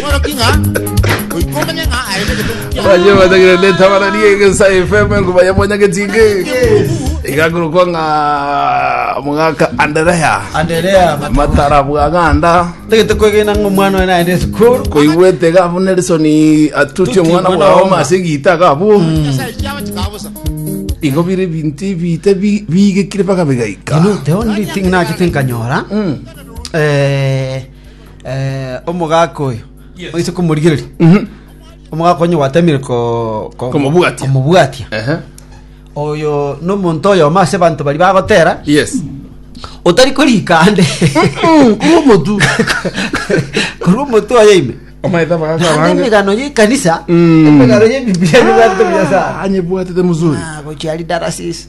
Mworoki ng'a goika omenye ng'a aye negetungu kia Baje batagire neta baranie gesa FM kubaya mwanya getinge. Igakuru kwa nga mugaka Anderea. Anderea Matara bwa ganda. tegete kwegena ng'a omwana oyo naende esukuru Koigwete gabu Nelson atuti omwana mwana bwa wa Oma ase gita gabu. nyasaye chiabo chikabusa. Igo bire binti bite bi- bigekire baka bigaika. You know, the only thing nachete nkanyora eh, Eh, omogaka oyo oise komorigereria omogaka onye gwatemire ko- ko- Komobwatia. komobwatia Ehe. oyo nomonto oyomo ase abanto bari bagotera Yes. otari korika ande Korwa omotu. korwa omoto oyo ime Omaete abagaka Naende abange. emegano y'ekanisa Mm. emegano y'ebibilia n'ebibato bia Nyasaye. Anyebwatete muzuri. Ah, gochiari darasis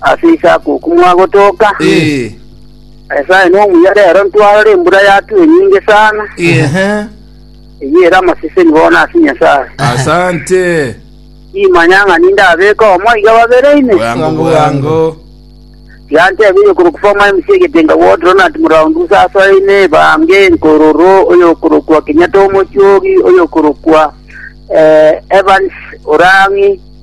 Ase isakuku mwagotoka. Eh. Nyasae nomuya rero ntwarora embura yatue enyinge sana. Ehe. Eyio ere amaseseni bono ase Nyasae. Asante. Imanya ng'a ninde abeka omo iga babere ime. Bwango bwango. Yantebirie okorokwa former MC egetenga ward Ronald Muraundu sasoine ebange nkororo oyokorokwa Kenyatta omochiogi oyokorokwa eh, Evans Orangi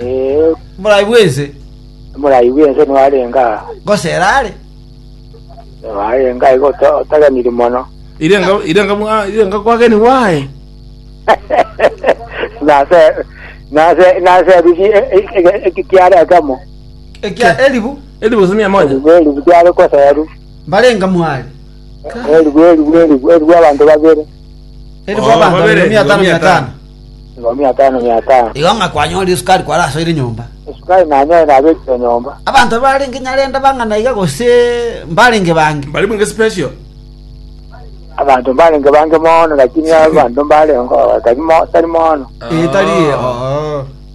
Ee, Morai bw'ense, omorai bw'ense nigo arenge aa. gose erare. Nigo arenge aiga ota- otageniri mono. Irenga irenga mwa irenga kwageni wae. Nase, nase, nase ebigi e- e- e- eki kiaretamo. Ekia eribu Eri bose ni amonya. Eribu, eribu kiare koseru. mbarenga mwari. Eribu, eribu, eribu, eribu abanto babere. Elfu Oo, abanto babere, mia tano, mia tano. Nigo mia tano mia tano. Igo ng'a kwanyorire esukari kware ase ere nyomba. Esukari nanyoire nabekire nyomba. Abanto barenge Nyarenda bang'ana iga gose mbarenge bange? Mbare bwenge special. Abanto mbarenge bange mono, lakini abanto mbarengeo tari mo- tari mono. Ee, tari oo.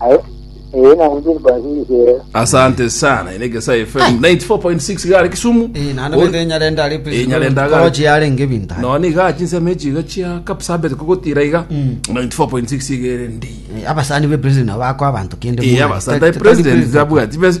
Aye, eye na injiri kwa injiri siere. Asante sana ine Gesae FM 94.6 gare Kisumu. Eh, naende Ori- bende Nyarenda ari Eh, Nyarenda aga- Korochi yarenge binta. noni iga chinsemo echi iga chia kapsabet kogotira iga 94.6 iga ere ndi Eh, Abasani be president nabo ako abantu kende. iya mwana. basanta Tari- tari president president. gabwati bes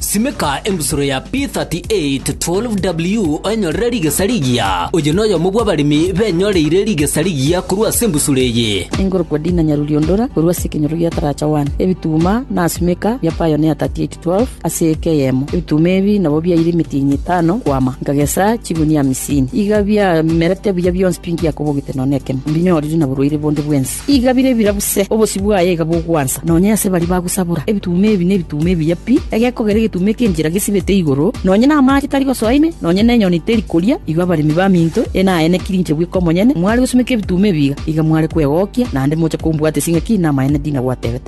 Simeka embusuro ya P3812W oenyorere rigesa rigiya. Oyo noyomo bw'abaremi benyoreire rigesa rigiya korwa ase embusuro eye. Engorokwa Dina Nyaruliondora korwa ase ekenyoro gia Taracha One. Ebituma na simeka bia Pioneer 3812 ase eke eyemo. Ebituma ebi nabo biaire emetienyi etano kwama. Nkagesa chigunia amisini. Iga biamerete buya bionsi pi ngiakobogete nonya nekemo. Mbinyorire na borwaire bonde bw'ense. Iga bire ebirabu se, obosio bwaye iga bogwansa, nonya ase baria bagosabora. Ebituuma ebi nebituuma ebiya pi, egekogera egetuuma ekenchera gesibete igoro, nonya namaache tari gosoa ime, nonya nenyoni teri koria. Igo abaremi baminto ene aye nekirinche bweka omonyene, mware gosumeka ebituuma ebi iga, iga mware kwegokia, naende moche kombwata ase ng'a ki namaene ndinagwatebete.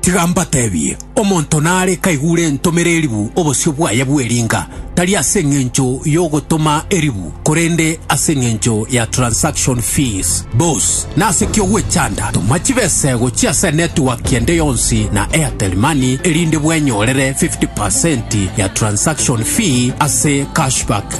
Tiga mbatebie, omonto nare kaigure entomere eribu obosio bwaye bw'eringa, tari ase engencho y'ogotoma eribu, korende ase engencho ya transaction fees. Bos, nase ki ogwechanda? Toma chibesego chia ase network ende yonsi na Airtel Money erinde bwenyorere 50% ya transaction fee ase cashback.